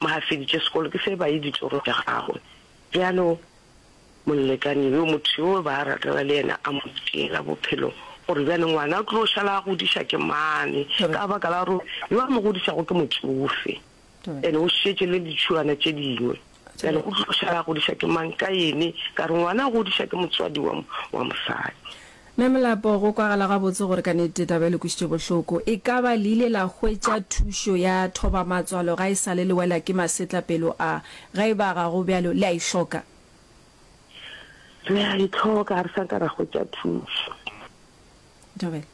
Mo a feditše sekolo, ke se ba ye ditorong tša gagwe. Bjalo molekane yo, motho yo ba ratana le yena, a mo tšeela bophelo, gore bjale ngwana o tlo šala a godiša ke mane, ka baka la gore yo a mo godišago ke motšofe, ene o šetše le ditšhuana tše dingwe. Bjale o tlo šala a godiša ke mang ka ene? Ka re ngwana o godiša ke motswadi wa mosadi. Mme Molapo, go kwagala gabotse gore ka nnete taba e le kwešitše bohloko. E ka ba le ile la hwetša thušo ya thoba-matswalo ga e sa le le wela ke masetla pelo a? Ge e ba ga go bjalo, le a e hloka? Re a e hloka, ga re sa ka ra hwetša thušo. Thobela,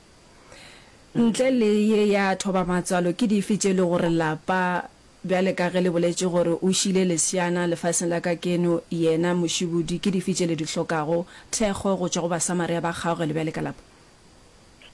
ntle le ye ya thoba-matswalo, ke dife tše e le gore lapa Bjale ka ge le boletše gore o šile leswiana lefaseng la ka keno yena mošibudi, ke dife tše le di hlokago? Thekgo go tšwa go Basamaria ba kgaoge le bjale ka lapa?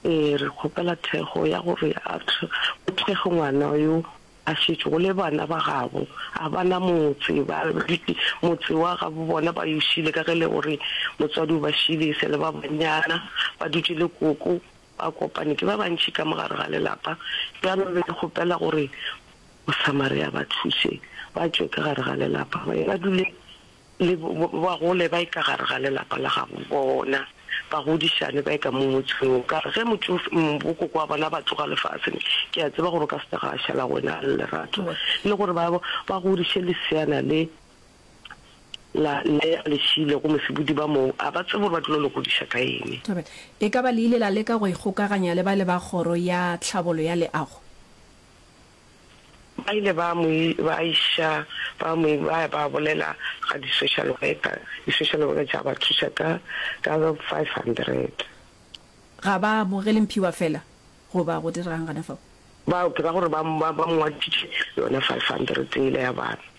Ee, re kgopela thekgo ya gore a tle o thekge ngwana yo a šetšego le bana ba gabo. A ba na motse, ba dutše motse wa gabo bona, ba yo šile ka ge le gore motswadi o ba šile e sa le ba banyana, ba dutše le koko Ba kopane ke ba bantši ka mo gare ga lelapa, bjalo be ke kgopela gore Mosamaria a ba thuse ba tšwe ka gare ga lelapa ba ye ba dule le ba gole ba ye ka gare ga lelapa la gabo bona, ba godišane ba ye ka mo motseng o. Ka re ge motšofe, bokoko wa bona ba tloga lefaseng, ke a tseba gore o ka se tla ga a šala go wena a le lerato le gore ba ba godiše leseana le. la nea lešile go mosibudi ba mong, a ba tsebe gore ba tlilo le godiša ka eng. Amen. E ka ba le ile la leka go ikgokaganya le bale ba Kgoro ya Tlhabolo ya Leago? Ba ile ba mo ba iša ba mo ba ya ba bolela ga di-social worker. Di-social worker tša ba thuša ka ka five hundred. Ga ba amogele mphiwa fela goba go dira'ng gana fao? Ba ke ka gore ba ba ba mo ngwaditše yona five hundred yela ya bana.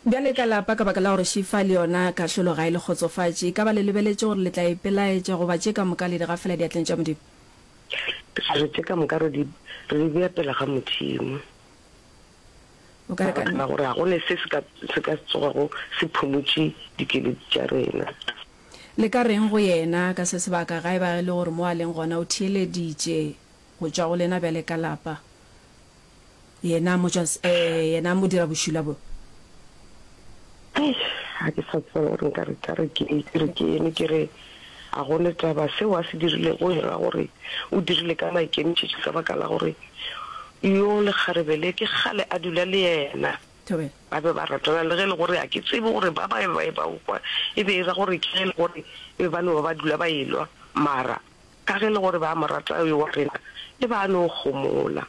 Bjale ka lapa, ka baka la gore Shifa le yona kahlolo ga e le kgotsofatše, e ka ba le lebeletše gore le tla ipelaetša goba tše ka moka le di gafela diatleng tša Modimo? Re re tše ka moka re di, re di bea pela ga Modimo. O ka re ka baka la gore ga go ne se se ka, se ka se tsogago se phumutše dikeledi tša rena. Le ka reng go Yena ka se sebaka ga e ba e le gore mo a leng gona o theeleditše go tšwa go lena bjale ka lapa? Yena motšwas, ee, yena modirabošula bo. Eish, ga ke sa tseba gore nka re ka re ke eng, ke re ke eme ke re, A go ne taba, seo a se dirilego e ra gore o dirile ka maikemišetšo ka baka la gore yo lekgarebe le ke kgale a dula le yena? Thobela. Ba be ba ratana le ge e le gore ga ke tsebe gore ba ba e ba e ba kwa e be e ra gore ke ge e le gore e be ba no ba ba dula ba e lwa, mara. Ka ge e le gore ba mo rata, yo wa rena e ba a no gomola.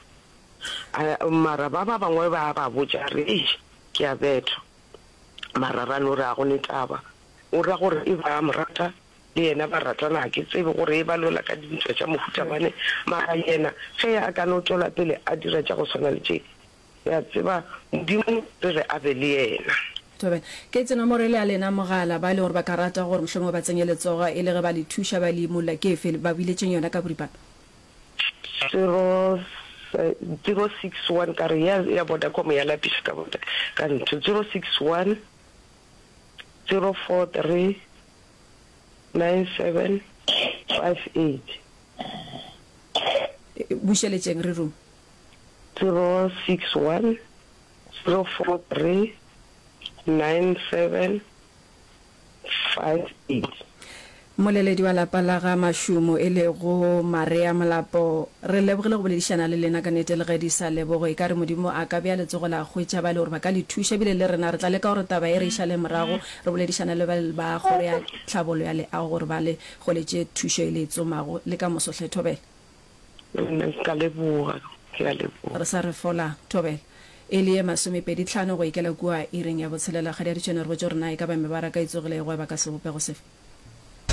A mara ba ba bangwe ba ba botša a re, Eish, ke a bethwa. Mara ra no re, A go ne taba. O ra gore e ba a mo rata, le yena ba ratana. Ga ke tsebe gore e ba lwela ka dintwa tša mohuta mane, mara yena ge a ka no tšwela pele a dira tša go swana le tše, Ke a tseba Modimo re re a be le yena. Thobela. Ke tse nomoro e le ya lena mogala, ba e leng gore ba ka rata gore mohlomongwe ba tsenye letsogo e le ge ba le thuša ba le imolla ke efe? Ba biletšeng yona ka boripana. Zero, zero six one ka re ya ya Vodacom ya lapiša ka botla ka ntho zero six one, zero four three, nine seven, five eight. Bušeletšeng re rung. 061 043 9758. Moleledi wa lapa la ga Mashumo e lego Marea Molapo, re lebogile go boledišana le lena. Ka nete le ge di sa lebogwe, e ka re Modimo a ka bea letsogo la hwetša ba e le gore ba ka le thuša. Ebile le rena re tla leka gore taba ye re e šale morago, re boledišane le ba Kgoro ya Tlhabolo ya Leago gore ba le goletše thušo e le e tsomago le ka moso. Hle Thobela. Le nna ke ka leboga. Ke a leboga. Re sa re fola, thobela. E le ye masomepedi tlhano go ikela kua iring ya botshelela, kgadiaditšene re botše gore na e ka ba mebaraka e tsogile e gweba ka sebopego sefe?